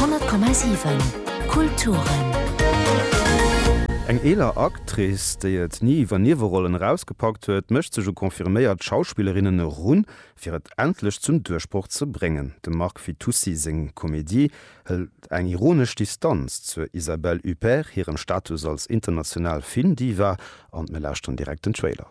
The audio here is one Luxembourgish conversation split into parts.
100,7 Kulturen. Eng eeler Actrice, déi et ni iwwer Niewerollen erausgepackt huet, mécht sech u confirméiert Schauspillerinnen erun, fir et endlech zum Duerchbroch ze bréngen. Dem Mark Fitoussi seng Komedie hëlt eng ironesch Distanz zur Isabelle Huppert hirem Status als international Filmdiva an mir lauschteren direkt den Trailer.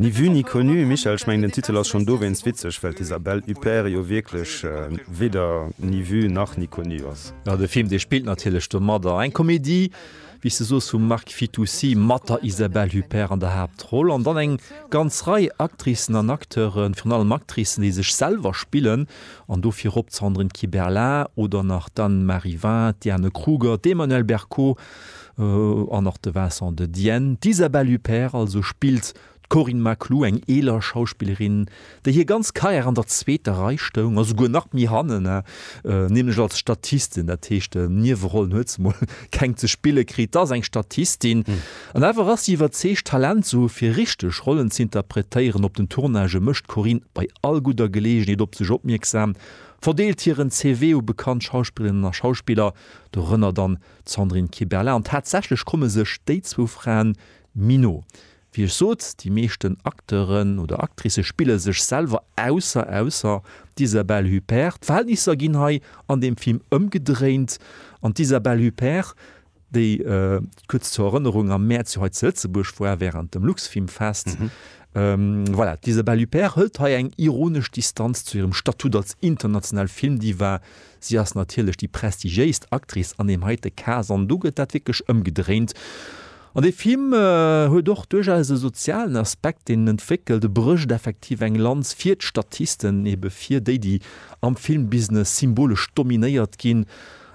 Ni vue ni connu, Michel, ech mengen den Titel ass schonn dowéinst witzeg, well d'Isabelle Huppert jo wierklech weder ni vue nach ni connu ass. Jo, de Film, dee spillt natierlech domadder. Eng Komedie, wéi s de soos, vum Marc Fitoussi mat der Isabelle Huppert an der Haaptroll an dann eng ganz Rei Actricen an Acteuren, virun allem Actricen, déi sech selwer spillen an do virop d'Sandrine Kiberlin oder nach d'Anne Marivin, d'Diane Kruger, d'Emmanuelle Bercot An och de Vincent de Dienne. D'Isabelle Huppert also spillt d'Corinne Maclou, eng eeler Schauspillerin, déi hir ganz Karriär an der zweeter Rei stoung a souguer nach méi hannen, nämlech als Statistin. Dat heescht, Niewerollen huet se mol keng ze spille kritt. Dass eng Statistin. An awer ass si iwwerzeegt, Talent ze hu fir richteg Rollen ze interpretéieren. Op den Tournagë mécht d'Corinne bei all gudder Geleegenheet op sech opmierksam, verdeelt hiren CV u bekannt Schauspillerinnen a Schauspiller, dorënner dann D'Sandrine Kiberlin an tatsächlech komme sech déi zwou Fraen méi no. Wéi ech sot, déi meeschten Acteuren oder Actricë spille sech selwer, ausser ausser d'Isabelle Huppert. D'Verhältnisser ginn hei an deem Film ëmgedréint an d'Isabelle Huppert, déi, kuerz zur Erënnerung, am Mäerz jo hei zu Lëtzebuerg war wärend dem Luxfilmfest, voilà, d'Isabelle Huppert hëlt hei eng ironesch Distanz zu hirem Statut als international Filmdiva, Si ass natierlech déi prestigiéist Actrice an deem heite Cas an do gëtt dat wierklech ëmgedréint. An dee Film huet och duerchaus e sozialen Aspekt, deen en entwéckelt. E brécht effektiv eng Lanz fir d'Statisten, ebe fir déi, déi am Filmbusiness symbolesch dominéiert ginn,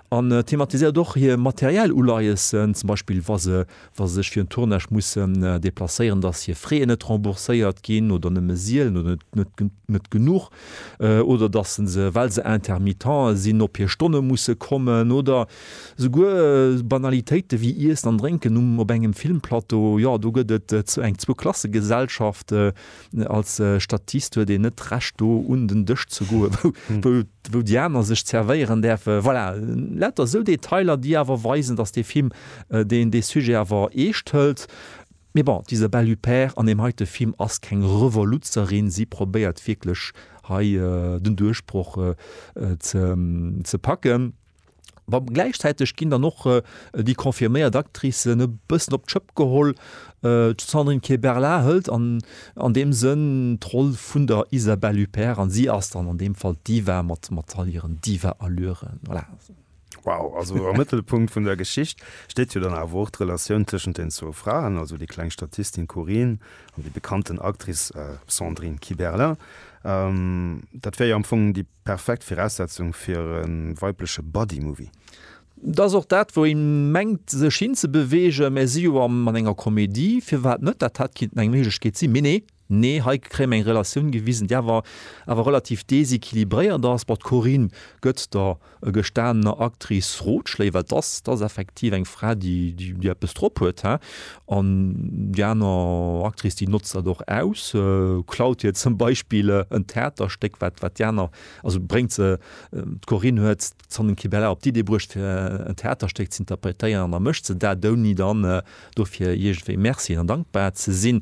an thematiséiert och hir materiell Uleiessen, zum Beispill wa se wa sech fir en Tournage mussen deplacéieren, dass hir Frais net rembourséiert ginn oder nëmme sielen oder net genuch oder dass se se, well se Intermittente sinn, op hir Stonne musse kommen oder souguer Banalitéite wéi Iessen an Drénken op engem Filmplateau. Jo, do gëtt et eng Zwou-Klasse-Gesellschaft. Als Statist huet een net d'Recht do un den Dësch ze goe wou déi aner sech zervéieren däerfen. Voilà, lauter esou Detailer déi awer weisen, datt dee Film deen dee Sujet awer eescht hëlt. Mee bon, diese Belupère an deem heite Film ass keng Revoluzzerin, si probéiert wierklech hei den Duerchbroch ze packen. Wa gläichzäiteg ginn dann och déi confirméiert Actricen e bëssen op d'Schëpp geholl. D'Sandrine Kiberlin hëlt an an deem Sënn d'Roll vun der Isabelle Huppert an si ass dann an deem Fall d'Diva mat mat all hiren Diva-Allüren. Voilà. Wow, also am Mëttelpunkt vun der Geschicht steet jo dann awer och d'Relatioun tëschent den zwou Fraen, also déi kleng Statistin Corinne an déi bekannten Actrice Sandrine Kiberlin. Dat wär jo am Fong déi. Perfekt Viraussetzung fir e weibleche Buddy Movie. Et ass och dat wou een mengt sech hin ze beweegen, mä si jo am an enger Komedie, firwat net, dat hat kinnten eng Méiglechkeet sinn, mee nee, nee hei kréie mer eng Relatioun gewisen déi awer awer relativ déséquilibréiert ass. Bon d'Corinne gëtt der gestanener Actrice Rotschléi well 't ass 't ass effektiv eng Fra déi déi eppes drop huet hein. An déi aner Actrice déi notzt dat och aus, klaut hir zum Beispill en Theaterstéck, wat wat déi aner, also bréngt se, d'Corinne huet d'Sanne Kibeler op d'Idee bruecht fir en Theaterstéck ze interpretéieren an da mécht se dat, ouni dann dofir iergendwéi Merci an dankbar ze sinn.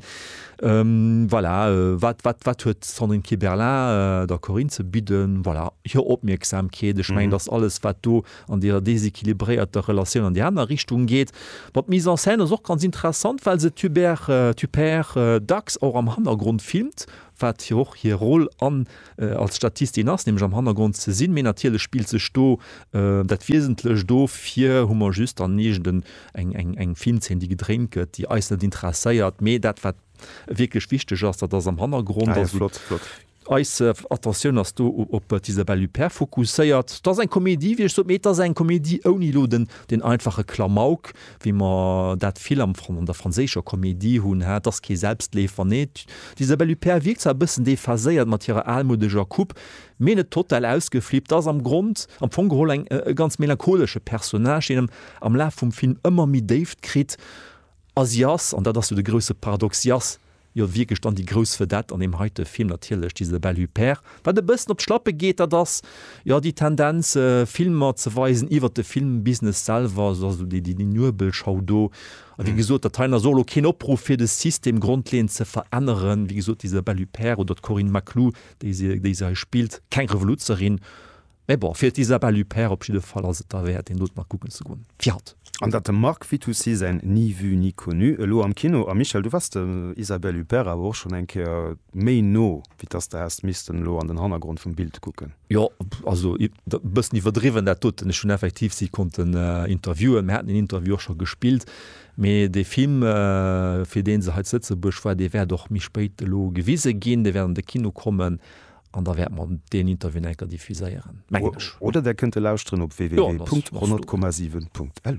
Voilà, wat wat wat huet d'Sandrine Kiberlin der Corinne ze bidden? Voilà, hir Opmierksamkeet. Ech mengen, dat ass alles wat do an deeër deséquilibréierter Relatioun an déi aner Richtung geet. Bon, d'Mise en scène ass och ganz interessant, well se d'Hubert Huppert dacks och am Hannergrond filmt, wat jo och hir Rôle an als Statistin ass, nämlech am Hannergrond ze sinn, mee natierlech spillt sech do dat Wiesentlecht do. Fir hu mer just dann iergendeng eng, eng, eng Filmzeen, déi gedréint gëtt, déi eis net interesséiert, mee dat, wat wierklech wichteg ass, dat ass am Hannergrond. Ah ja, flott, flott. Eis Attentioun ass do op d'Isabelle Huppert fokusséiert. Et ass eng Komedie, wéi ech sot, mee et ass eng Komedie ouni elo deen einfache Klamauk, wéi mer dat vill am, an der franséischer Komedie hunn. Hat, et ass kee Selbstleefer, nee. D'Isabelle Huppert wierkt zwar e bëssen déphaséiert mat hirer almoudeger Coupe, mee net total ausgeflippt. Ass am Grond, am Fong geholl eng, e ganz melancholesche Personnage, deen am Laf vum Film ëmmer méi Déift kritt a si ass, an dat ass jo de grousse Paradox, si ass Jo wierklech dann déi grouss Vedette an deem heite Film natierlech, d'Isabelle Huppert. Wat e bëssen op d'Schlappe geet, dat ass jo déi Tendenz Filmer ze weisen iwwer de Filmbusiness selwer, also dass elo déi déi Nuebelschau do a wéi gesot dat heien ass och elo keen Opruff fir de System grondleeënd ze veränneren. Wéi gesot d'Isabelle Huppert oder d'Corinne Maclou, déi se déi se hei spillt, keng Revoluzerin, Mä bon, fir d'Isabelle Huppert op jidde Fall ass et derwäert, een Dotemer kucken ze goen. Fir haut. An datt dem Marc Fitoussi säin Ni vu ni connu elo am Kino, a Michel, du wars der Isabelle Huppert awer och schonn eng Kéier méi no, wéi dass de häss missten elo an den Hannergrond vum Bild kucken. Jo, also e bëssen iwwerdriwwen dat doten. Ech hunn effektiv si konnten interviewen, mir haten een Interview och scho gespillt, mee dee Film, fir dee se hei zu Lëtzebuerg war, dee wäert och méi spéit elo gewise ginn, dee wäert an de Kino kommen. An da wäerte mer deen Interviewen enker diffuséieren, mengen ech. Oder Där kënnt e lauschteren op www.100,7.lu.